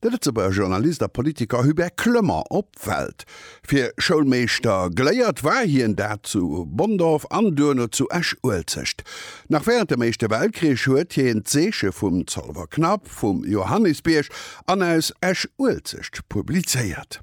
De Lëtzebuerger Journalist a Politiker Hubert Clement op Welt. Fir Schoulmeeschter geléiert war hien dat zu Bonndorf an duerno zu Esch-Uelzecht. Nach wärend dem Éischte Weltkrich huet hien d'Zeeche vum Zolwer Knapp, vum Johannisbierg an aus Esch-Uelzecht publizéiert.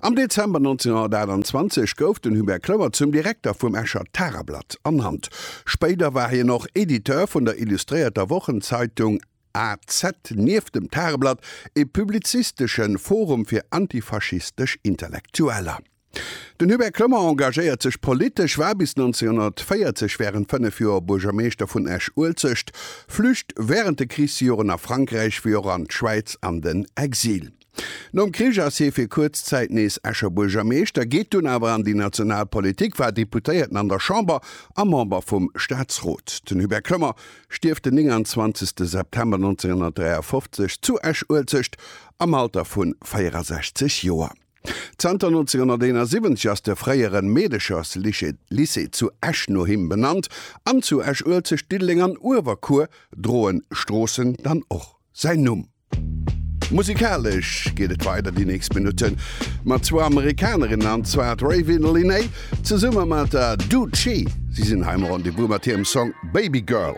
Am Dezember 1928 gouf den Hubert Kloer zum Direkter vum Escher Tageblatt ernannt. Spéider war hien och Editeur vun der illustréierter Wochenzeitung az. Nieft dem Tageblatt e publizistesche Forum fir antifaschistesch Intellektueller. Den Hubert Kloer engagéiert sech politesch, war bis 1940 wärend fënnef Joer Buergermeeschter vun Esch-Uelzecht, flücht wärend de Krichsjoren a Frankräich wéi och an d'Schwäiz an den Exil. Nom Krich ass hie fir kuerz Zäit nees Escher Buergermeeschter, geet dunn awer an déi national Politik, war Deputéierten an der Chamber a Member vum Staatsrot. Den Hubert Kloemer stierft den 29 de September 1953 zu Esch-Uelzecht am Alter vu 64 Joer. Zanter 1971 ass de fréieren Meedecherslycée zu Esch no him benannt an zu Esch-Uelzecht, Diddeleng an Uewerkuer droen d'Stroossen dann och säin Numm. Musikalesch geet et weider déi nächst Minutte mat zwou Amerikanerinnen, an zwar d'Raven Lenae zesumme mat der Doechii. Si sinn hei am Rendez-vous mat hirem Song Baby Girl.